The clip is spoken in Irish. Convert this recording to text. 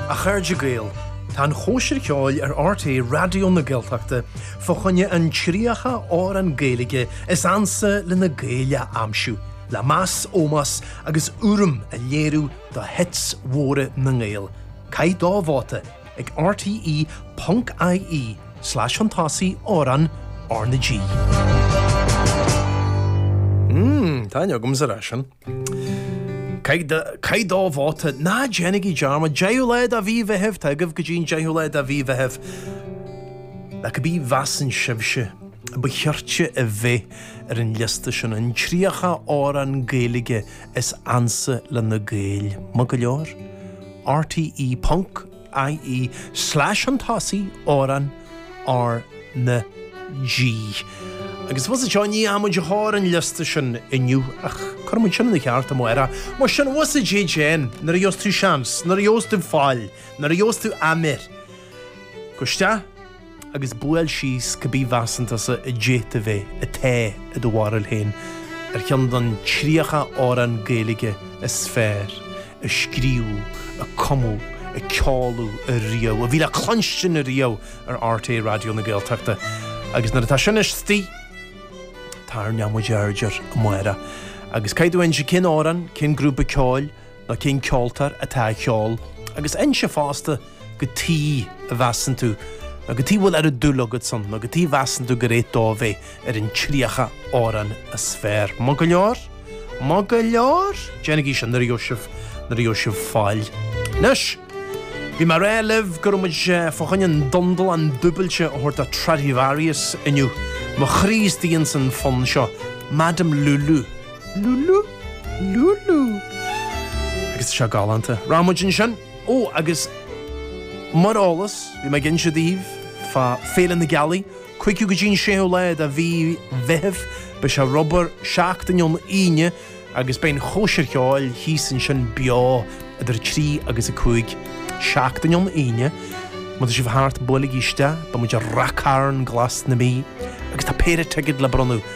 A chairde Gael, tá an chóisir cheoil ar rte Raidió na Gaeltachta fá choinne an 30 amhrán Gaeilge is ansa le na Gaeil a aimsiú, le meas, ómós agus urraim a léiriú do hits mhóra na nGael. Caith dá vóta ag rte.ie slash an t-ochtú amhrán R na G. Mmm, taitneoidh agamsa leis sin. Caith do vóta, ná déanaigí dearmad! Deichiú lá de mhí Mheithimh! Tá agaibh go dtí an deichiú lá de mhí Mheithimh. Cá bith a mheasann sibhse a ba chirte a bheith ar an liosta sin, an tríocha amhrán Gaeilge is ansa le na Gaeil? Maith go leor. R T E ponc. i e, slash an tosaigh, amhrán, R na G. Agus was anseo, ní fhaighimid a tháir an liosta sin inniu, ach cuirfidh muid sin ina cheart amárach. Mar sin, was a jj en, nuair a gheobhas tú seans, nuair a gheobhas tú faill, nuair a gheobhas tú áiméar. Gabh isteach agus buail síos cá bith a mheasann tusa atá, i do bharúil féin, ar cheann den 30 amhrán Gaeilge is fearr a scríobhadh, a cumadh, a ceoladh riamh, a bhí le cluinstin riamh ar rte Raidió na Gaeltachta. Agus nuair atá sin istigh, tabharfaidh muid aird air amárach agus abair dúinn cén amhrán, cén grúpa ceoil, nó cén ceoltóir atá á cheol agus inis fosta cad chuige a measann tú nó cad chuige a bhfuil an oiread dúil agat ann nó cad chuige a measann tú gur cheart dó a bheith ar an tríocha amhrán is fearr. Maith go leor? Maith go leor? Déanaigí sin nuair a gheobhaidh sibh, nuair a gheobhaidh sibh faill. Anois, bhí mé ag rá libh go raibh muid fá choinne an dundalán dúbailte a thabhairt do Stradivarius inniu, mo chroí is d'ionn san fonn seo, Madame Lulu. Lulu! Lulu! Agus seo galánta. Raibh muid ansin! Ó, agus mar eolas, bhí mé ag inse daoibh fá Fhéile na Gealaí, 5ú go dtí an 6ú lá de mhí Mheithimh. Beidh sé ar obair seachtain ón Aoine agus beidh an chóisir cheoil thíos ansin beo idir 3 agus 5. Seachtain ón Aoine. Má tá sibh thart, buailigí isteach. Beidh muid i Rath Cairn glas na Mí agus tá péire ticéad le bronnadh.